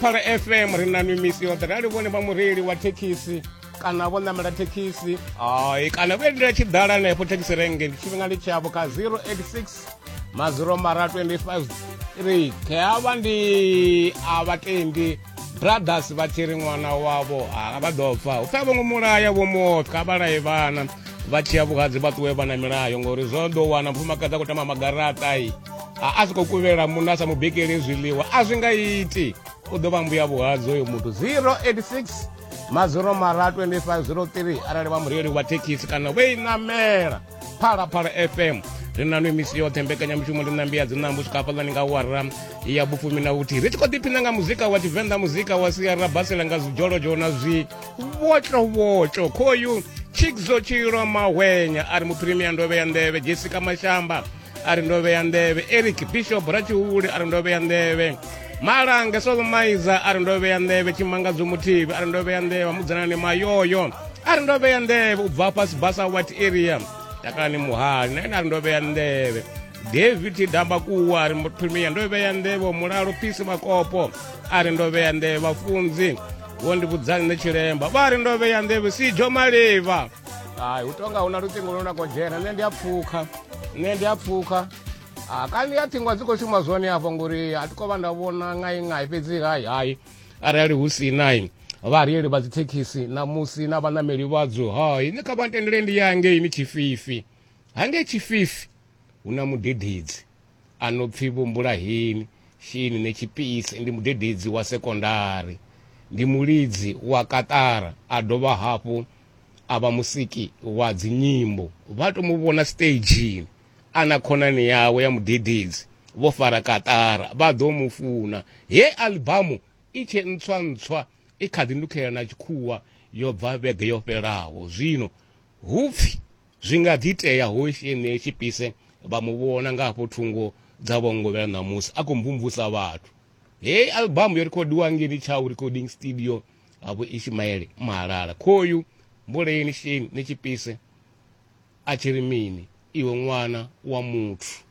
phala fm ri na mimisi yoṱhe rali vhone vha mureili wa thekhisi kana vho ṋamela thekhisi ai kana vho endela tshiḓala henefho thekhisi renge tshifhinga ndi tshavho kha 086 maziro mara 25 3 khe avha ndi a vhatendi brothers vha tshi ri ṅwana wavho a vha ḓo pfa u pfha vhongo mulaya vho moka vha laye vhana vha tshiya vhuhadzi vha ṱuwe vha na milayo ngori zwo ḓo wana mufumakadzi a khou tama magaraṱa i a a soko kuvhela munna a sa mu bikeli zwiḽiwa a zwi nga iti u ḓo vha mbuya vhuhadzo uyo muthu 086 maziro mara 2503 arali vha mureili wa thekhisi kana vhe inamela phalaphala fm ri na no misi yoṱhe mbekanyamushumo ri nambi ya dzinambo swika hafhaḽani nga wara ya vhufumi na vhuthihi ri tshi khou ḓiphina nga muzika wa tshivenḓa muzika wa siara basela nga zwidzholozholo na zwi vhotlhovhotlho khoyu chikzo tshilo mahwenya a ri muphirimiya ndovhe ya nḓevhe jessica mashamba a ri ndo vhea nḓevhe eric bishop ratshihule a ri ndo vhea nḓevhe malanga solomaiza a ri ndo vhea nḓevhe tshimangadzo muthivi a ri ndo vhea nḓevhe mudzanani mayoyo a ri ndo vhea nḓevhe u bva fhasi basa white area takalani muhali na ene a ri ndo vhea nḓevhe david damba kuwa a ri muthumia ndo vhea nḓevhe mulalo phisi makopo a ri ndo vhea nḓevhe vhafunzi vho ndi vhudzani nṋe tshilemba vha ri ndo vhea nḓevhe sijo malivha hai hu tonga hu na luṱingo lune lwa khou dzhena nṋe ndi a pfukha nṋe ndi a pfukha ah, kanzhi ya ṱhingo a dzi khou shuma zwone afho ngori a thi khou vha nda vhona ngai ngai fhedzi hai hai arali hu si nai vhareili vha dzithekhisi namusi na vhanameli vhadzo hai ni kha vha ntendele ndi ya ngei ni tshififi hangei tshififi hu na mudededzi a no pfi Vho Mbulaheni Shini Netshipise ndi mudededzi wa sekondari, ndi mulidzi wa kaṱara a dovha hafhu a vha musiki wa dzinyimbo. Vha tou mu vhona siteidzhini a na khonani yawe ya mudededzi vho fara kaṱara vha ḓo mu funa. He aḽibamu i tshe ntswa-ntswa i kha ḓi nukhelela na tshikhuwa yo bva vhege yo fhelaho. Zwino hu pfi. Zwi nga ḓi itea hosi enei tshipise vha mu vhona nga hafho thungo dza vhongovhela ṋamusi a khou mvumvusa vhathu. Heyi albamu yo rekhodiwa ngeni Tshau Recording Studio ha Vho Ishimaele Mahalala. Khoyu mbuleni sheni ni tshipise a tshi ri mini iwe ṅwana wa muthu.